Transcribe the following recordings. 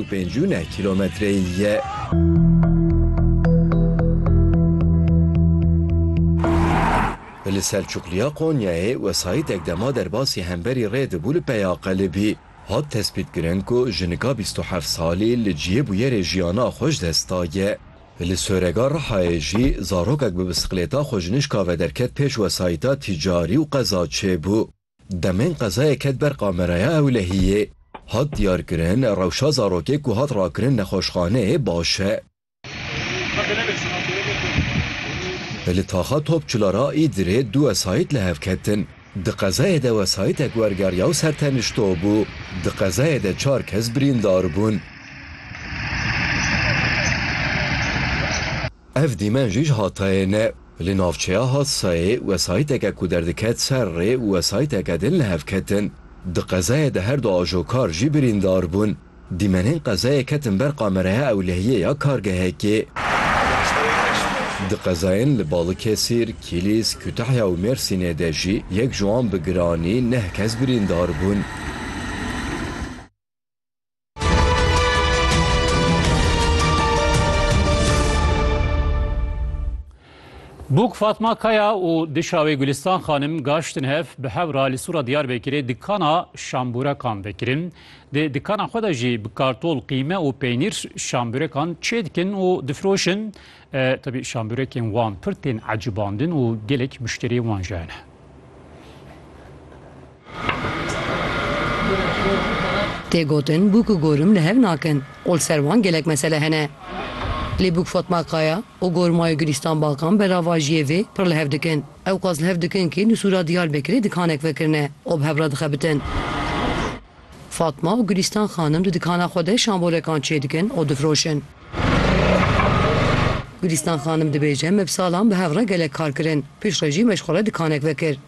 û pêncî û neh kîlometreyî ye. Li Selçuqliya Konyayê wesayîtek dema derbasî hemberî rê dibû li peya qelibî hat tespîtkirin ku jinika bîst û heft salî li cihê bûyerê jiyana xwe ji dest daye. Li Sorega Rihayê jî zarokek bi bisiklêta xwe ji nişka ve derket pêş wesayîta tîcarî û qeza çêbû. Demên qezayê ket ber kameraya ewlehiyê. Hat diyarkirin, rewşa zarokê ku hat rakirin nexweşxaneyê baş e. Li taxa Topçular a Îdirê du wesayît li hev ketin. Di qezayê de wesayîtek wergeriya û sertenişto bû. Di qezayê de çar kes birîndar bûn. Ev dîmen jî ji Hatayê ne. Li navçeya Hadsayê wesayîteke ku derdiket ser rê û wesayîteke din li hev ketin. Di qezayê de her du ajokar jî birîndar bûn. Dîmenên qezayê ketin ber qamereya ewlehiyê ya kargehekê. Di qezayên li Balikesir, Kîlîs, Kutahya û Mêrsînê de jî yek ji wan bi giranî neh kes birîndar bûn. Bûk Fatma Kaya û dişa wê Gulistan Xanim gaştin hev bi hewra li Sura Diyarbekirê dikana şambûrekan vekirin. Di dikana xwe de jî bi kartol, qîme û peynîr şambûrekan çê dikin û difiroşin. Tebî şambûrekên wan pir tên ecibandin û gelek muşteriyên wan jî hene. Tê gotin bûk û gorim li hev nakin û li ser wan gelek mesele hene. Lê bûk Fatma Kaya û gormayê Gulîstan Bakan beravajiyê vê pir li hev dikin. Ewqas li hev dikin kî li sûra Diyarbekirê dikanek vekirine û bi hev re dixebitin. Fatma û Gulîstan xanim di dikana xwe de şambolekan çêdikin û difroşin. Gulîstan xanim dibêje, Me bi salan bi hev re gelek kar kirin. Piştre jî me ji xwe re dikanek vekir.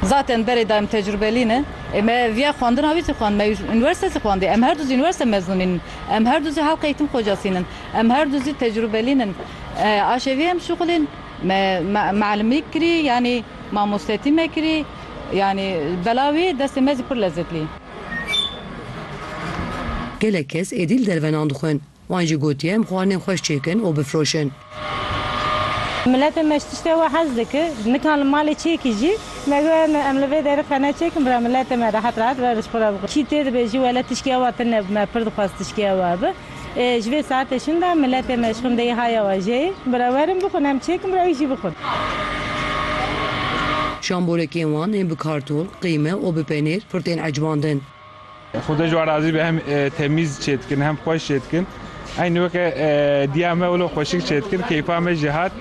Zaten berê dayim tecrubelî ne. Ê me viya xwendina wî zî xwend. Me unîversîte zî xwendî. Em her du zî unîversîte mezûnîn in. Em her du zî halka eğîtim xocasîn in. Em her du zî tecrubelîn in. Aşê vê em şuxulên me mealimî kirî yanî mamostetî me kirî. Yanî bela wî destê me zî pir lezzet lî. Gelek kes êdî li dervenan dixwin. Wan jî gotiye em xwarinên xweş çêkin û bifroşin. Miletê me ji tiştê we hez dikir. Nika li malê çêkî jî me got em li vê derê xwe neçêkin bira miletê me rehet rehet verin ji xwe re bixwin. Kî tê dibêjî wele tişkê ew a tune bime pir dixwest tişkê ew a bi. Ji vê saetê şin de miletê me ji xwindeyê haya wajeyê. Bira werin bixwin em çêkin bira wî jî bixwin. Şamborekên wan ên bi kartol, qîme û bi penêr pir tên ecbandin. Xwedê ji wan razî be hem temîz çê dikin hem xweş çê dikin. Eynî weke diya me wilo xweşik çê dikin. Keyfa me jî hat.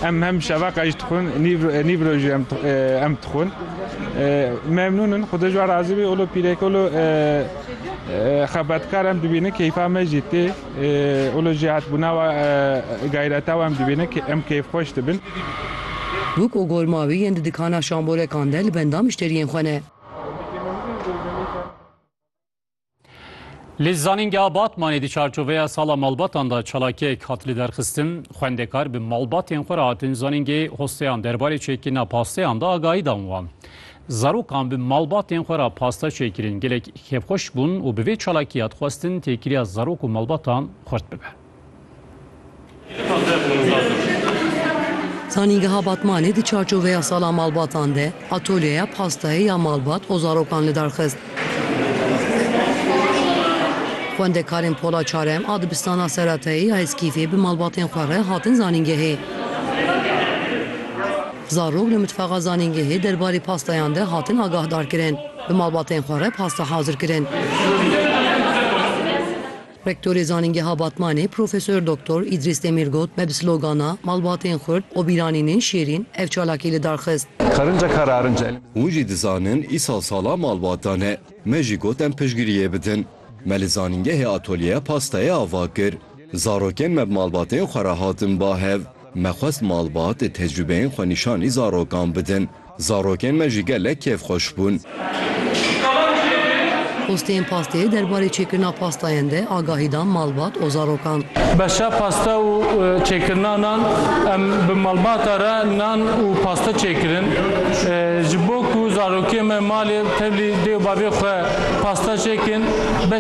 Em hem şeva qe jî dixwin, nîv rojî em dixwin. Memnûn in. Xwedê ji wan razî be wilo pîreke wilo. Xebetkar em dibînin keyfa me jî tê û li jêhatbûna we gayreta we em dibînin em keyfxweş dibin. Bûk û gorma wî yên di dikana şamborekan de li benda mişteriyên xwe ne. Li Zanîngeha Batmanê di çarçoveya Sala Malbatan de çalakiyek hat lidarxistin. Xwendekar bi malbatên xwe re hatin zanîngehê hosteyan derbarê çêkirina pasteyan de agahî dan wan. Zarokan bi malbatên xwe re pasta çêkirin, gelek kêfxweş bûn û bi vê çalakiya dixwestin têkiliya zarok û malbatan xurt bibe. Zanîngeha Batmanê di çarçoveya Sala Malbatan de atolyeya pastayê ya malbat û zarokan lidar xist. Xwendekarên Pola Çarem a Dibistana Seratayê ya Heskîfê bi malbatên xwe re hatin zanîngehê. Zarok li mitfaxa zanîngehê derbarê pastayan de hatin agahdarkirin. Bi malbatên xwe re pasta hazir kirin. Rektorê Zanîngeha Batmanê Profesor Doktor Îdrîs Demîr got, Me bi slogana, Malbatên xurt, û Bîranînên şêrîn ev çalakî li dar xist. Hûn jî dizanin îsal sala malbata ne. Me jî got em piştgiriyê bidin. Me li zanîngehê atolyeya pastayê ava kir. Zarokên me bi malbatên xwe re hatin ba hev. Me xwest malbat ê tecrûbeyên xwenîşanî zarokan bidin. Zarokên me jî gelek kêfxweş bûn. Posteyên pastê derbarê çêkirina pastayan de agahî dan malbat û zarokan. Beşa pasta û çêkirina nan, Em bi malbata re nan û pasta çêkirin. Ji bo ku zarokên me malê tevlî dê û bavê xwe pasta çêkin,